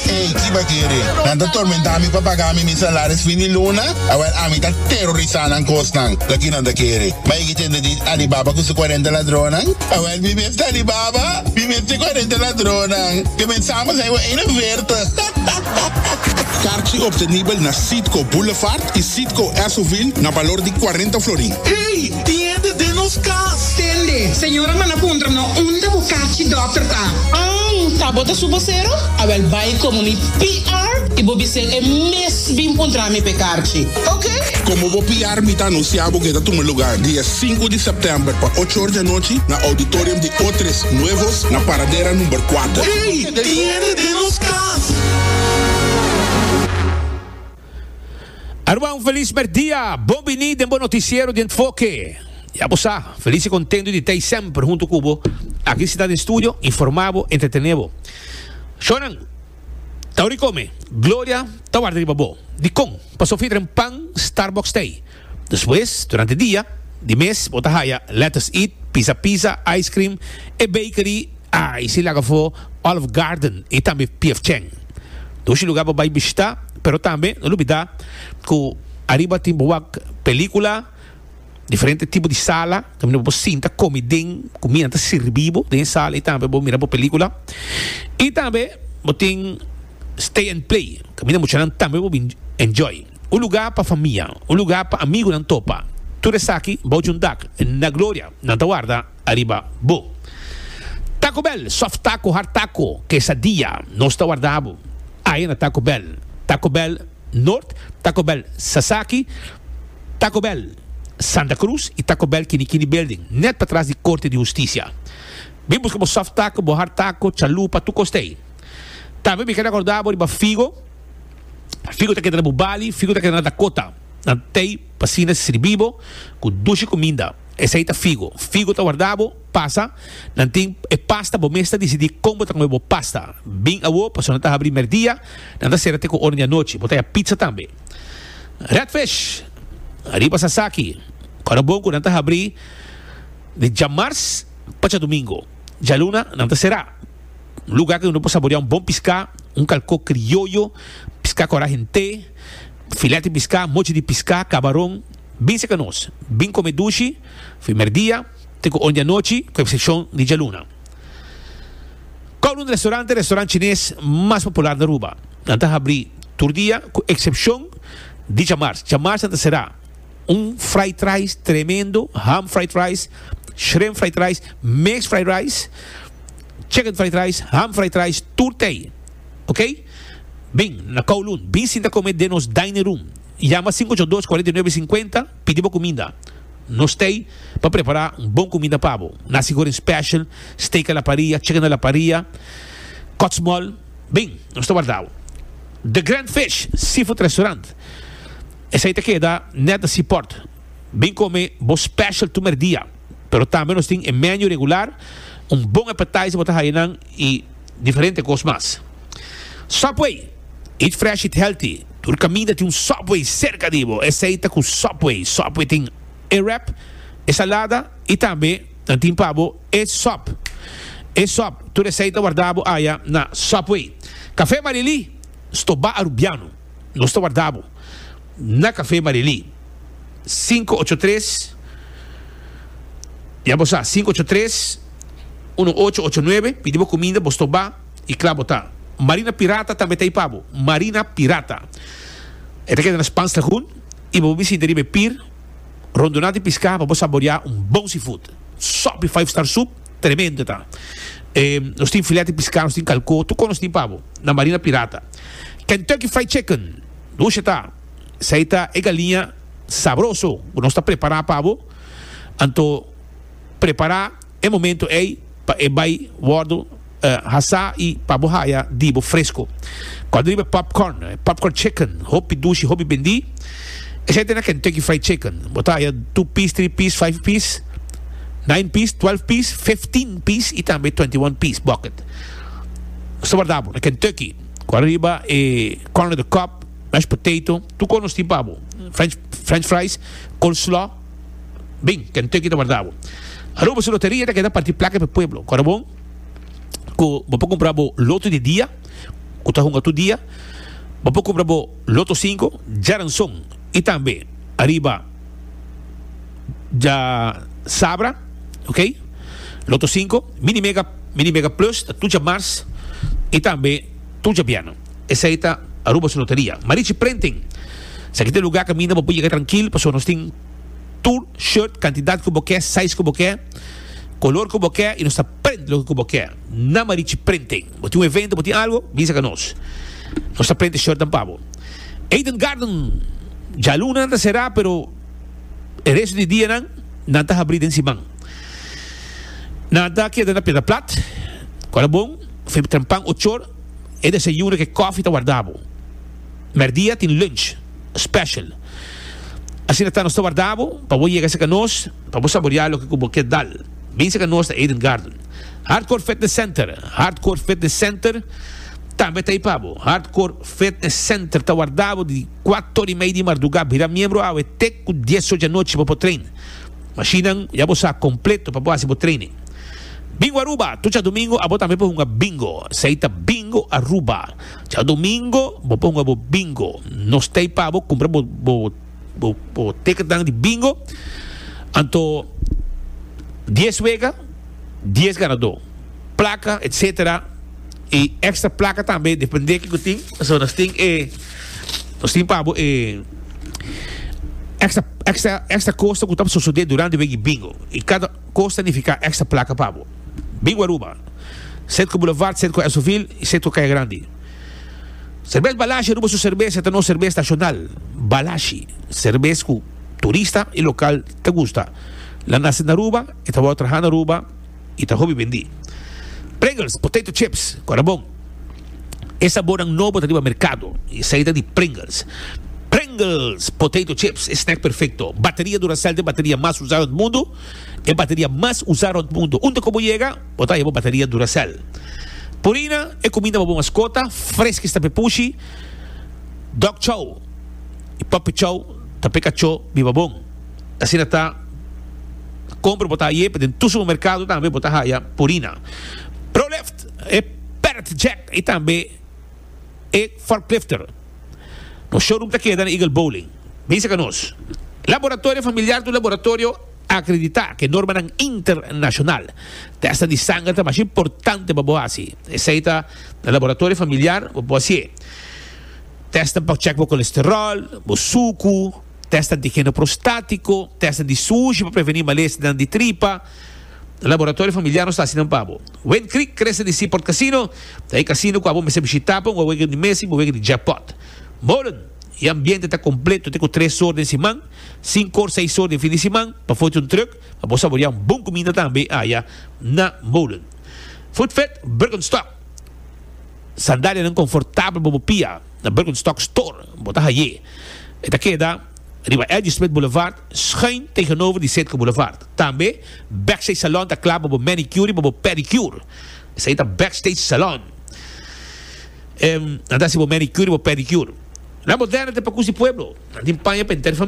Ey, ki bakere, nan ta tormentá mi pa pagá mi mi salaris fin di luna? Awel ami ta terorisá nan kosnan, loke nan ta kere. Bai yegi tende di Alibaba ku su kuarenta ladronnan? Awel mi mes ta Alibaba, mi mes ta e kuarenta ladronnan. Comensamos hei bo eina verta. Karchi obtenibel na Citgo Boulevard y Citgo Esso-ville na balor di cuarenta florin. Ey, tiende den nos cas! Tende, señora manda puntra no unda bo karchi dokter ta. Ang, ta bo ta su bosero? Awel bay como mi PR y bo bis'el e mes bin puntra mi p'e karchi. Ok. Como bo PR mi ta anuncia bo cu e ta tuma lugar di e sinku di september pa ocho or di anochi na auditorium di Otres Nuevos na Paradera number cuater. Ey, tiende den nos cas! Aruba, un felis merdia! Bon bini den bo noticiero di Enfoke! Ya bo sa, felis i contento di ta ei semper hunto cu bo, aki sita den studio, informa bo, entretene bo. Shonan, ta ora di come. Gloria ta warda riba bo. Dicon? Pa Sofie dren pan Starbucks thee. Despues, durante dia di mes bo ta haya Lettuce Eat, Pizza Pizza, Ice Cream, e Bakery, ay si laga afó Olive Garden y tambe P. F. Chang. Dushi lugar bo bay bishita, pero tambe no lubida cu ariba tin bo wak pelicula, diferente tipo di sala unda bo sinta comi den, cuminda ta sirbi bo den e sala y tambe bo mira bo pelicula. Y tambe bo tin Stay and Play, caminda muchanan tambe bo bin enjoy. un lugá pa famia, un lugá pa amigunan topa. Tur esaki bou djun dak na gloria nan ta warda ariba Bo. Taco Bell, soft taco, hard taco, quesadilla, nos ta warda Bo aye na Taco Bell, Taco Bell Nort, Taco Bell Sasaki, Taco Bell Santa Cruz y Taco Bell Kini Kini Building, net patras di Corte di Husticia. Bin buska bo soft taco, bo hard taco, chalupa, tur cos t'ey. Tambe mi keda acorda Bo riba Figo, Figu ta keda na bu bali, figu ta keda na Dakota, na tei pa asina sirbi bo ku dushi kuminda. Esei ta figu. Figu ta warda bo, pasa, nan tin e pasta, bo mes ta disidí kon bo ta kome bo pasta. Bin awo, pasobra nan ta habrí merdia, nan ta sera te ku oren di anochi. Bo ta ya pitsa tambe. Redfish! Ariba Sasaki, ku ora bon ku nan ta habrí di djamars pa djadumingu, djaluna nan ta será. luga ku uno por saborea un bon piská, un kalkó krioyo, piská kòrá hent'é, filèt di piská, mochi di piská, kabaron. Bin seka nos, bin kome dushi primer dia te ku ondi anochi, ku eksepshon di djaluna. Kowloon Restaurante restaurant chines mas popular na Aruba. Nan ta habri tur dia ku eksepshon di djamars. Djamars nan ta será. Un fried rice tremendo, ham fried rice, shrimp fried rice, mixed fried rice. chicken fried rice, ham fried rice, tur tei. Ok? Bin na Kowloon, bin sinta come den nos dining room. Yama cinco ocho dos cuarenta y nueve cincuenta, pidi bo cuminda. Nos tei pa prepara un bon cuminda pa bo. Nasi goreng special, steak a la parrilla, chicken a la parrilla, kotsmol. Bin, nos ta warda bo. The Grand Fish Seafood Restaurant, esei ta keda net na Seaport. Bin come bo special tu merdia. pero tambe nos tin e menu regular, un bon appetizer bo ta haya nan y diferente cos mas. Subway, eat fresh, eat healthy, tur caminda tin un Subway cerca di bo, esey ta cu Subway, Subway tin e wrap, e salada y tambe nan tin pa bo e sub, e sub, tur esey ta warda bo aya na Subway. Cafe Marilí, Sto Ba Arubiano, nos ta warda bo. Na Café Marilí, sinku ocho tres, Ya bo sa, sinku ocho tres, uno ocho ocho nuebe, pidi bo kuminda, bo stobá i kla bo ta. Marina Pirata tambe ta ei pa bo. Marina Pirata. E ta keda na Spaanslagoen i bo bo bisinti riba e pir rondona di piská pa bo saboreá un bon seafood. Sòp di five star soep, tremendo ta. E nos tin filèt di piská, nos tin kalkó, tur kos nos tin pa bo na Marina Pirata. Kentucky Fried Chicken, dushe ta, esei ta e galiña sabroso ku nos ta prepará pa bo, anto prepará e momento ei pa e bai wòrdu hasá i pa bo haya di bo fresko. Kòrda riba e popcorn, e popcorn chicken, hopi dushi, hopi bendí. Esei ta na Kentucky Fried Chicken, bo ta haya two piece, three piece, five piece, nine piece, twelve piece, fifteen piece i tambe twenty one piece bucket. Sta bardabo na Kentucky cu ariba e corn on the cob, mashed potato, tur cor nos tin pa bo, french, french fries, coleslaw, bin, Kentucky ta bardabo. Aruba su loteria ta keda parti placa pa e pueblo, cora bon cu bo por cumpra bo loto di dia, cu ta hunga tur dia, bo por cumpra bo loto cinco, djaranson y tambe ariba. dja sabra ok loto 5 mini mega mini mega plus ta tur dja mars y tambe tur dja bierne esey ta Aruba su loteria Marichi printing esaki ta e lugar caminda bo por yega trankil pasobra nos tin tur shirt cantidad cu bo ke size cu bo ke color cu bo ke y nos ta print loke cu bo ke na Marichi printing. Bo tin un evento, bo tin algo, bisa ka nos. Nos ta prente shortnan pa bo. Eden Garden, djaluna nan ta será, pero e resto di dianan nan ta habrí den siman. Nan ta keda na Piedra Plat, ku a la bon, fe trempan ochor, e desayuno ku e kòfi ta warda bo. Mèrdia tin lunch special. Asina ta, nos ta warda bo pa bo yega serka nos pa bo saboreá loke ku bo ke dal. Bin serka nos na Eden Garden. Hardcore Fitness Center, Hardcore Fitness Center tambe ta ipa bo. Hardcore Fitness Center ta warda bo di kuat tor i mei di mardugá bira miembro awe te ku dies ocho di anochi pa bo train. Mashinnan ya bo sa kompleto pa bo hasi bo training. Bingo Aruba, tur djadumingo abo tambe por hunga bingo. Esei ta Bingo Aruba. Djadumingo bo por hunga bo bingo. Nos ta ipa bo kumpra bo Bo bo teken dan di bingo anto dies wega dies ganadó plaka etc i extra plaka tambe depende kiko tin so nos tin e nos tin pa bo e extra extra extra koste ku ta por sosodé durante wek di bingo i kada koste ta nifiká extra plaka pa bo bingo Aruba Centro Boulevard Centro Esovil i Centro Kaya Grandi. Serbes Balashi Aruba su serbes e ta nos serbes nashonal. Balashi, serbes ku turista i lokal ta gusta. Nan nase na Aruba, e ta wou traha na Aruba i ta hopi bendí. Pringles, potato chips, ku a ta bon. E sabornan nobo ta riba merkado i esei ta di Pringles. Pringles, potato chips, e snack perfekto. Bateria Duracell ta e bateria mas usado na mundu. E bateria mas usá rònt mundu. Unda ku bo yega, bo ta haya bo bateria Duracell. Purina, e kuminda pa bo maskota, freski sta pepushi, dog chow i puppy chow ta pe kachó biba bon. Asina ta, kompra bo ta haya e pa den tur supermerkado tambe bo ta haya Purina. Prolift, e parrot jack i tambe e forklifter. Nos showroom ta keda na Eagle Bowling. Bisa ka nos. Laboratorio familiar ta un laboratorio akreditá ku e normanan internashonal. Tèsta di sanger ta masha importante pa bo hasi. Esei ta na laboratorio familiar bo por hasié. Tèsta pa chèk bo kolesteròl, bo suku, tèsta antigeno prostátiko, tèsta di sushi pa prevení malesnan di tripa. Laboratorio Familiar nos ta hasi nan pa bo. Wind Creek krese di Seaport Casino ta e casino ku abo mester bishitá pa un wawega di mes i un wawega di jackpot. Molen, e ambiente ta kompleto te ku tres or den siman, sinku or seis or den fin di siman pa fote un truk pa bo saboriá un bon kuminda tambe aya na Molen. Food Fed Birkenstock Sandalianan konfortabel pa bo pia na Birkenstock Store bo ta hai'é. E ta keda. Riba Eddy Smith Boulevard, schuin tegenover di Sitka Boulevard. Tambe Backstage Salon ta kla pa bo manicure y pa bo pedicure. Esei ta Backstage Salon. Nan ta haci bo manicure y bo pedicure. Nan bo derde te pa Cusi Pueblo. Nan tin paña pa henter famia.